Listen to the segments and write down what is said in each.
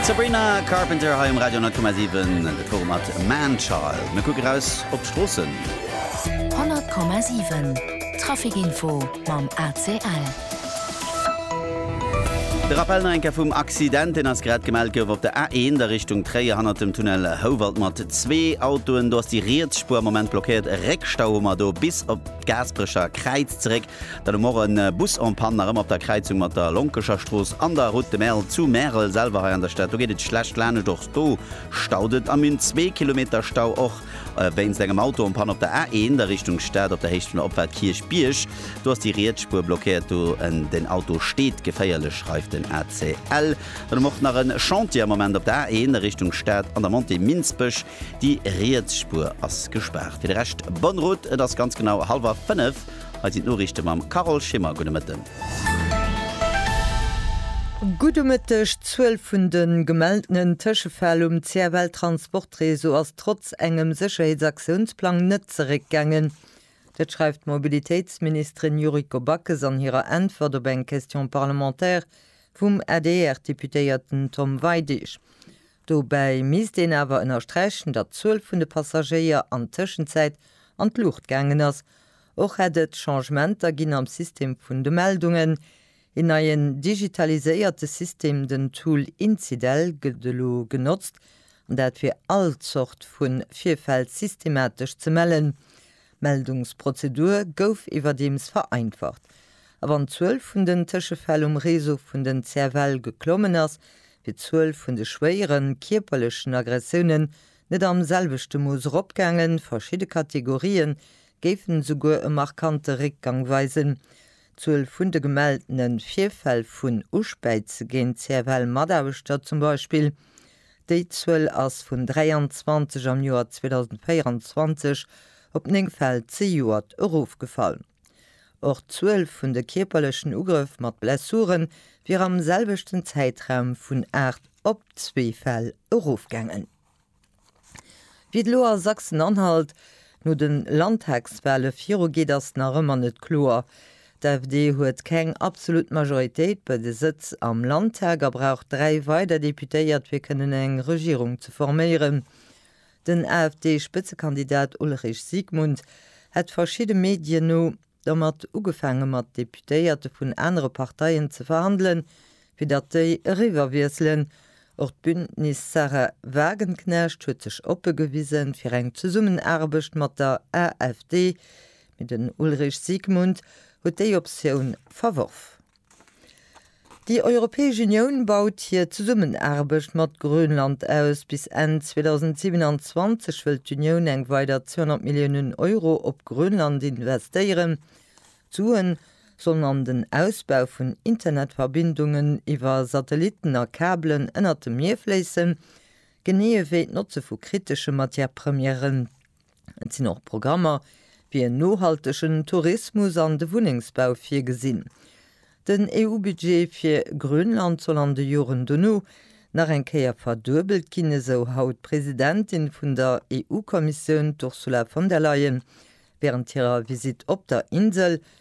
D'Sabrina Carpenter hei um Radio 10,7, de Forum mat Man Child. Mir kucke raus op d'Stroossen. 100,7 Trafikinfo mam ACL. De Rappel nach eng Kéier vum Accident, deen ass grad gemellt gouf op der A1 a Richtung Tréier hannert dem Tunnel Houwald mat zwee Autoen. Do ass déi riets Spuer am Moment blockéiert. E Réckstau hu mer do bis op d'Gaasperecher Kräiz zeréck. Dann hu mer och e Bus en panne, nach ëmmer op der Kräizung mat der Lonkecher Strooss an der Route de Merle zu Märel selwer. Hei an der Stad, do geet et schlecht laanescht, och do staut et a mir hunn zwee Kilometer Stau och wéinst engem Auto en panne op der A1 a Richtung Stad op der Héicht vun der Opfahrt Kierchbierg. Do ass déi riets Spuer blockéiert, do den Auto steet geféierlech, schreift den ACL. Dann hu mer och nach e Chantier am Moment op der A1 a Richtung Stad an der Montée Minsbech, déi riets Spuer ass gespaart. Fir de Rescht, bonne route, et ass ganz genau hallwer fënnef. Hei sinn d'Noriichte mam Carole Schimmer. Gudde Mëtten. Gudde Mëtteg. D'Zuel vun de gemeltenen Tëschefäll um CFL-Transportreseau ass trotz engem Sécherheetsaktionsplang net zeréckgaangen. Dat schreift d'Mobilitéitsministerin Yuriko Backes an hirer Äntwert op eng Question parlementaire vum ADR-Deputéierten Tom Weidig. Dobäi misst een awer ënnersträichen, datt d'Zuel vun de Passagéier an Tëschenzäit an d'Luucht gaangen ass. Och hätt et Changementer ginn am System vun de Meldungen. Een neien digitaliséierte System, den Tool Incidel, gëtt elo genotzt, an dat fir all Zort vu Virfäll systematesch ze mellen. D'Meldungsprozedur gouf iwwerdeems vereinfacht. A wann d'Zuel vun den Tëschefäll um Réseau vun den CFL geklommen ass, D'Zuel vun de schwéieren, kierperlechen Aggressiounen net am selwechte Mooss eropgaangen, verschidde Kategorië géifen esouguer e markante Réckgang weisen. D'Zuel vun de gemeldene Virfäll vun Uspäize géint CFL-Mataarbechter zum Beispill, déi Zuel ass vun 23 am Joer 2024 op 9 Fäll zejoert erofgefall. Och d'Zuel vun de kierperlechen Ugrëff mat Blessure wier am selwechten Zäitraum vun 8 op zwee Fäll erofgaangen. Wéi et elo a Sachsen-Anhalt no de Landtagswale virugeet, ass nach ëmmer net kloer. D'AfD huet keng absolut Majoritéit bei de Sëtz am Landtag a brauch dräi weider Deputéiert, fir kënnen eng Regierung ze forméieren. Den AfD-Spëtzekandidat Ulrich Siegmund hätt verschidde Medien no dermat ugefaange mat Deputéierte vun anere Parteien ze verhandelen, fir datt déi eriwwer wiesselen. Och d'Bündnis Sahra Wagenknecht huet sech oppe gewise fir eng Zesummenaarbecht mat der AfD, mee den Ulrich Siegmund huet déi Optioun verworf. Déi Europäesch Unioun baut hir Zesummenaarbecht mat Grönland aus. Bis Enn 2027 wëll d'Unioun eng weider 200 Milliounen Euro op Grönland investéieren. D'Sue sollen an den Ausbau vun Internetverbindungen iwwer Satellitten a Kabelen ënnert dem Mier fléissen, genee ewéi d'Notze vu kritesche Matière-Premièren. Et sinn och Programmer fir en nohaltegen Tourismus an de Wunnengsbau virgesinn. Den EU-Budget fir Grönland soll an de Joren dono nach eng Kéier verduebelt ginn, esou haut d'Presidentin vun der EU-Kommissioun, d'Ursula von der Leyen, wärend hirer Visitt op der Insel.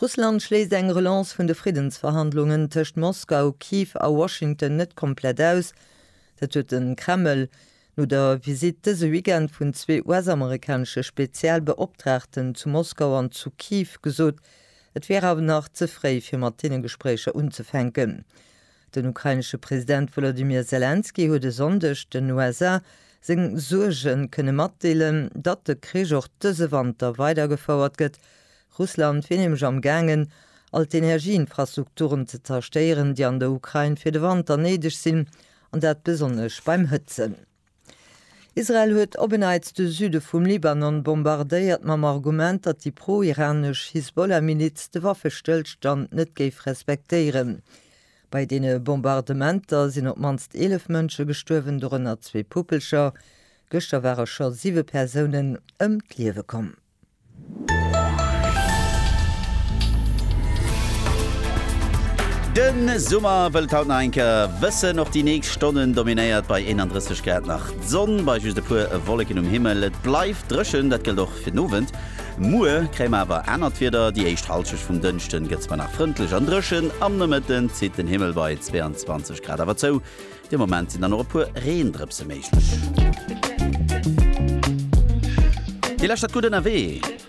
Russland schléisst eng Relance vun de Friddensverhandlungen tëscht Moskau, Kiew a Washington net komplett aus. Dat huet de Kreml no der Visitt dëse Weekend vun zwee US-amerikanesche Spezialbeoptraagten zu Moskau an zu Kiew gesot. Et wier awer nach ze fréi fir mat deene Gespréicher unzefänken. Den ukrainesche President Wolodymyr Selenskyj huet e Sonndeg den USA seng Suerge kënne matdeelen, datt de Krich och dëse Wanter weidergefouert gëtt. Russland wier nämlech am gaangen, all d'Energieinfrastrukturen ze zerstéieren, déi an der Ukrain fir de Wanter néideg sinn, an dat besonnesch beim Hëtzen. Israel huet op en Neits de Süde vum Libanon bombardéiert, mam Argument, datt déi pro-iranesch Hisbollah-Miliz de Waffestëllstand net géif respektéieren. Bei deene Bombardementer sinn op d'mannst 11 Mënsche gestuerwen, dorënner zwee Puppelcher. Gëschter ware scho siwe Persounen ëm d'Liewe komm. De Summer wëllt haut nach eng Kéier wëssen. Och déi nächst Stonnen dominéiert bei 31 Grad nach d'Sonn, bei just e puer Wolleken um Himmel. Et bleift dréchen, dat gëllt och fir den Owend. Muer kréie mer awer anert Wieder, déi éischt Hallschecht vum Dënschden gëtt zwar nach frëndlech an dréchen, am Nomëtten zitt den Himmel bei 22 Grad awer zou. De Moment sinn dann och e puer Reendrëpse méiglech. Dir lauschtert Gutt Ënnerwee!